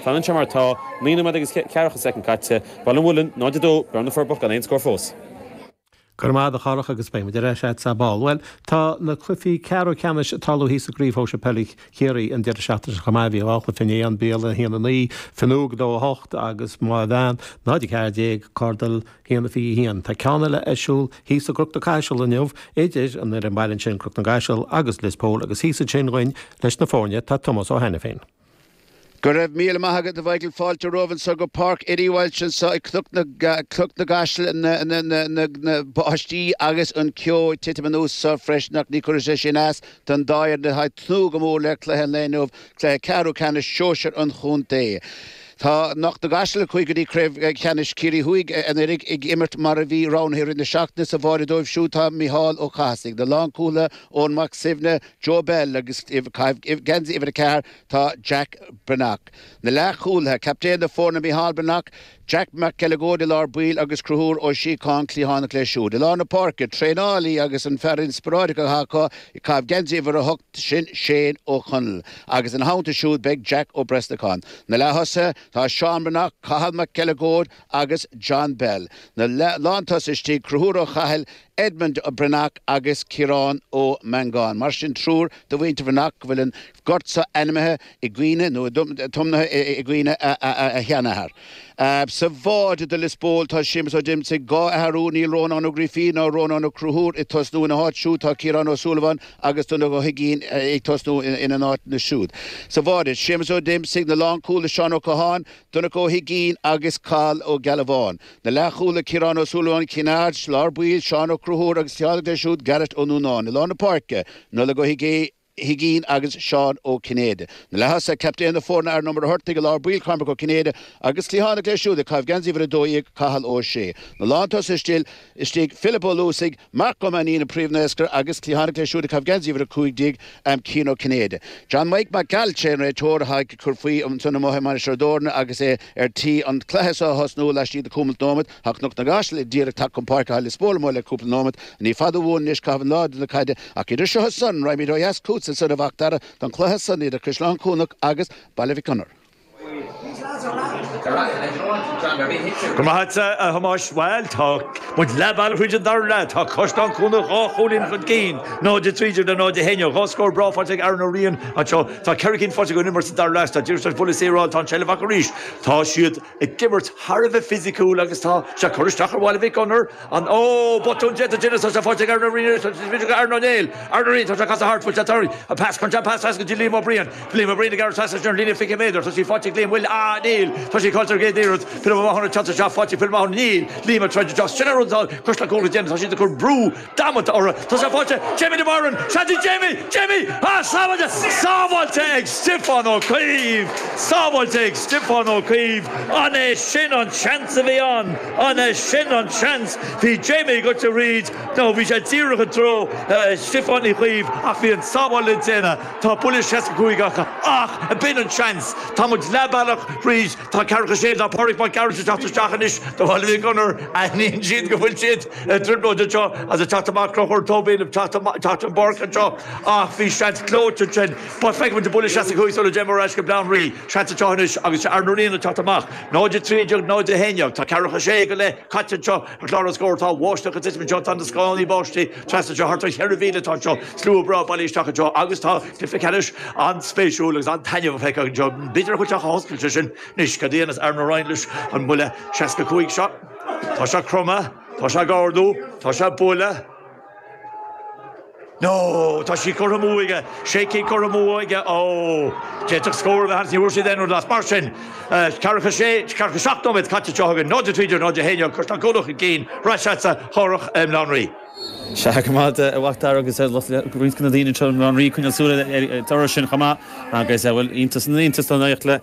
Fanann sé mar atá, naoi nóiméad agus ceathracha soicind caite. Baile an Mhuilinn, 0-2, Bearna na Forbacha gan aon scór fós. Go raibh maith agat a Dharach agus beimid ar ais a'd ar ball. Bhuel, tá na cluichí ceathrú ceannais ag tarlú thíos i gCraobh Shóisir Peile Chiarraí an deireadh seachtaine seo chomh maith. Bhí dhá chluiche inné, An Béal a haon 9, Fionnúig 2, 8 agus Maigh Mheáin, 0 14, Cordal 1, 21. Tá ceann eile ar siúl thíos i gCnoc na gCaiseal inniu idir an fhoireann baile ansin, Cnoc na gCaiseal agus Lios Póil agus thíos ansin dúinn leis na foirne tá Tomás Ó hAiniféin. Go raibh míle maith agat a Mhícheáil, fáilte romhaibh anso go Páirc Eddie Walsh anso i gCnoc na gCaiseal, an bháisteach agus an ceo ag titim anuas anso freisin ach ní chuirfidh sé sin as don dá fhoireann atá ag tnúth go mór le cluiche an lae inniu, cluiche ceathrú ceannais shóisir an chontae. Tá Cnoc na gCaiseal a chuaigh go dtí craobh cheannais Chiarraí Thuaidh anuraidh ag imirt mar a bhí roghnaithe i rith na seachtaine sa bháide dóibh siúd tá Micheál Ó Cathasaigh, na lánchúlaithe, Eoin Mac Suibhne, Joe Bell agus ag caitheamh geansaí uimhir a ceathair tá Jack Breathnach. Na leathchúlaithe, Captaen na foirne Micheál Breathnach, Jack Mac Uileagóid i lár baill agus Cruthúr Ó Síocháin cliathánach leis siúd. I lár na páirce, traenálaí agus an fear inspioráideach atá acu ag caitheamh geansaí uimhir a hocht sin Shane Ó Conaill. Agus ina theannta siúd beidh Jack Ó Brosnacháin. Na leath-thosaithe, tá Seán Breathnach, Cathal Mac Uileagóid agus John Bell. Na lántosaithe istigh, Cruthúr Ó Cathail, Edmund Breathnach agus Ciarán Ó Mangáin, mar sin, triúr de mhuintir Bhreathnach go bhfuil an gort seo ainmithe i gcuimhne, nó tiomnaithe i gcuimhne, a sheanathar. Sa bháide do Lios Póil tá Séamus Ó Díomasaigh, dhá athrú, níl Rónán Ó Grífín ná Rónán Ó Cruthúir ag tosnú ina háit siúd, tá Ciarán Ó Súilleabháin agus Donnchadh Ó hUiginn ag tosnú ina n-áit na siúd. Sa bháide Séamus Ó Díomasaigh na lánchúlaithe Seán Ó Catháin, Donncha Ó hUiginn agus Cathal Ó Gealbháin. Na leathchúlaithe Ciarán Ó Súilleabháin, Cinn Aird, i lár baill, Seán Ó Cruthúir agus cliathánach leis siúd Garret Ó Núnáin, i lár na páirce, Nollaig Ó hUiginn agus Seán Ó Cinnéide. Na leath-thosaithe, captaen na foirne Aaron Ó Muircheartaigh, i lár baill Cormac Ó Cinnéide agus cliathánach leis siúd ag caitheamh geansaí uimhir a dó dhéag Cathal Ó Sé. Na lán-tosaithe istigh Philip Ó Luasaigh, Marc Ó Mainnín an príomh-naoscaire agus cliathánach lei siúd ag caitheamh geansaí uimhir a cúig déag aim Cian Ó Cinnéide. John Mike Mac Gearailt sé an réiteoir atá ag cur faoi ansan amuigh i Mainistir Ó dTorna agus é Ar tí an cluiche seo a thosnú, laistigh de cúpla nóimead, tá Cnoc na gCaiseal díreach tagtha chun páirce tá Lios Póil amuigh le cúpla nóimead. Ní fada uainn anois caitheamh in airde na caide, ach idir seo is san, raghaimid ó dheas chútsa soir a Mhacdara don cluiche san idir Caisleán Cuanach agus Baile Mhic Gonair. Go raibh maith agat a Thomáis. Bhuel, tá muid leath bealaigh thríd an dara leath. Tá Caisleán Cuanach dhá chúilín chun cinn, 0-3 idir 0-1. Dhá scór breá faighte ag Aaron Ó Riain anseo. Tá ceithre cinn faighte ag an imirt sa dara leath. Tá Diarmuid Joyce buille saor ann, tá an tseilbh acu arís, tá siad ag imirt thar a bheith fisiciúil agus tá sé ag cur isteach ar Bhaile Mhic Gonair. An oh, botún déanta Dennis, tá sé faighte ag Aaron Ó Riain arís, tá sé faighte ag Aaron Ó Riain, Aaron Ó Riain, tá sé ag casadh thart, bhfuil sé tar éis an pas, crunchán pas as go dtí Liam Ó Briain, Liam Ó Briain ag gearradh trasna ar an líne 20 méadar, tá sí faighte ag Liam, bhfuil, ah, níl, tá sí caillte ar an gcéad iarraidh, Pilib Ó Mathúna ag teacht isteach, faighte ag Pilib Ó Mathúna, níl, Liam ag troid isteach, sin a rud atá, cuisle cúil ag Dennis, tá siad ag cur brú damanta orthu. Tá sé faighte. Jamie de Barún, Seaidí Jamie, Jamie! Á! Sábháilte! Sábháilte ag Stiofán Ó Cuív! Sábháilte ag Stiofán Ó Cuív! An é sin an seans a bhí ann? An é sin an seans? Bhí Jamie ag gabháil tríd, no, bhí sé díreach i dtreo Stiofán Uí Chuív ach bhí an sábháil le déanamh. Tá buille 65 aca. Ach b'in an seans. Tá muid leath bealach thríd. Tá ceathracha sé, tá Pádraig Mac Gearailt ag teacht isteach anois. Do Bhaile Mhic Gonair, aithníonn siad go bhfuil siad. i dtrioblóid anseo agus ag teacht amach cloch uair tóibh éilimh teacht ón bpáirc anseo ach bhí seans clóite ansin ach feicfidh muid an buille seasca cúig sula dtéim ar ais go Bléan Rí seans anseo anois agus is é Aaron Ó Riain atá ag teacht amach 0 a 13 0 a 11 tá ceathracha sé go leith caite anseo ar chlár an scór tá báisteach ag titim anseo tá na scánaí báistí trasna anseo thart ar cheithre mhíle atá anseo slua breá bailithe isteach anseo agus tá cluiche ceannais an-spéisiúil agus an-taitneamhach feicthe anseo b'fhéidir a chuid teach a hoscailt sé sin anois cad a dhéanfas Aaron Ó Riain leis an mbuille seasca cúig seo. Tá sé cromtha, tá sé ag ardú, tá sé ag bualadh. No! Tá sí curtha amú aige, tá sí curtha amú aige. Ó! D'fhéadfadh scór a bheith ann, ní bhfuair siad aon rud as. Mar sin, ceathracha sé, ceathracha seacht nóiméad caite anseo chugainn, náid a trí déag, náid a haon déag, cur slán cúnamh chun cinn, ar ais agatsa, a Chárthaigh, i mBléan Rí. Sea, go raibh maith agat, a Mhac Dara agus ar nós roinnt de na daoine anseo i mBléan Rí ag coinneáil súil ar an toradh sin chomh maith agus, bhuel, iontas na n-iontas don éacht le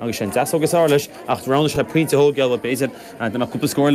Agus sé an deasóg is fhearr leis, acht roghnaigh sé pointe ciotóige, b'fhéidir, dá mbeadh cúpla scór eile